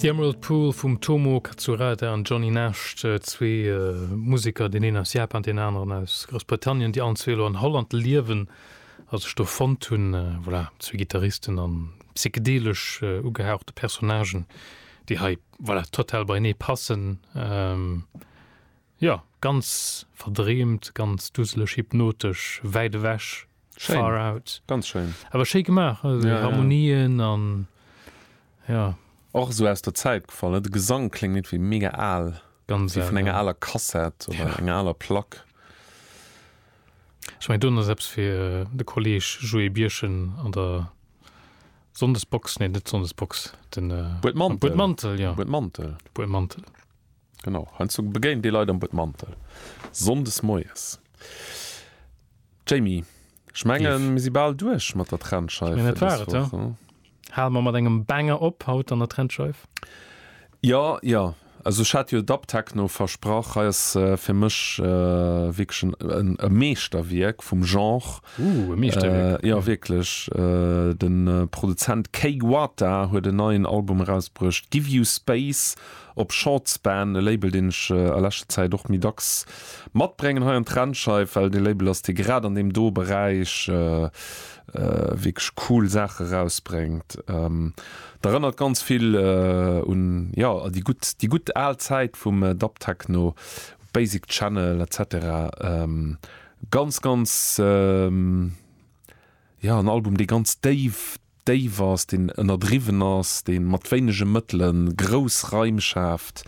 The Emerald Pool vum Tomo Katsurada an Johnny Nash, zwee Museker, deen een aus Japan, deen aneren aus Groussbritannien, déi allen zwee elo an Holland liewen a sech do fonnt hunn. Voilà, zwee Gittaristen a psychedelesch ugehauchte Personnagen, déi hei, voilà, total beienee passen. Jo, ganz verdreemt, ganz duseleg, hypnotesch, wäit ewech, far out. Ganz schéin. Awer schéi gemaach, déi Harmonien an jo. Och esou aus der Zäit gefall, ne? De Gesang kléngt iergendwéi mega al, wéi vun enger aler Kassett oder enger aler Plack. Ech mengen, do ass eppes fir de Kolleeg Joé Birchen an der Sonndesbox, nee, net Sonndesbox, de Buedmantel, jo, de Buedmantel. Genau, heiansdo begéint ee Leit am Buedmantel, sonndes moies. Jamie, ech menge mir si bal duerch mat der Trennscheif. Meng et war et, jo. Hale mer mat engem Banger op haut an der Trennscheif. Jo, jo, also ech hat jo Dubtechno versprach. Hei ass fir mech wierklech e Meeschterwierk vum Genre. Ooh, e Meeschterwierk. Jo, wierklech. De Produzent Kay Wata huet en neien Album erausbruecht, Give You Space, Op Short Span, e Label deen ech a leschter Zäit och méi dacks matbrengen hei an d'Rennscheif, well et ee Label ass dee grad an deem do Beräich wierklech cool Saache erausbrengt. D'erënnert ganz vill un jo déi gutt déi gutt al Zäit vum Dub Techno, Basic Channel etc. Ganz ganz jo en Album dee ganz déif déif ass, deen ënnerdriwwen ass, dee mat wéinege Mëttele grouss Raim schaaft.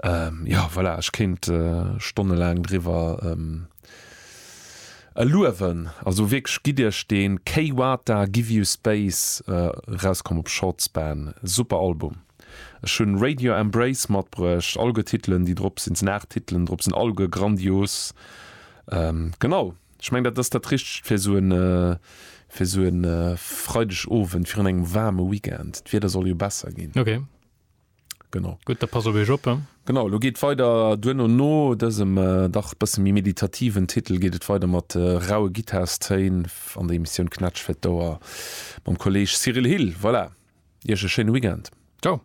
Jo, voilà, ech kéint stonnelaang driwwer luewen. Also wierklech, gitt Iech deen K-Wata, Give You Space, erauskomm op Short Span. Super Album. Ech hunn Radio Embrace matbruecht, alleguer Titelen, déi drop sinn, et sinn 8 Titelen drop, sinn alleguer grandios. Genau. Ech mengen, dat ass dat Richtegt fir esou e, fir esou e Freidegowend virun engem waarme Weekend. D'Wieder soll jo besser ginn. Okay. Genau. Gutt, da pass op Iech op. Genau, elo geet et weider duerno. No dësem dach bësse méi meditativen Titel geet et weider mat raue Gittarstëin an der Emissioun Knätsch fir d'Ouer mam Kolleeg Cyril Hill. Voilà, Iech e schéine Weekend. Ciao.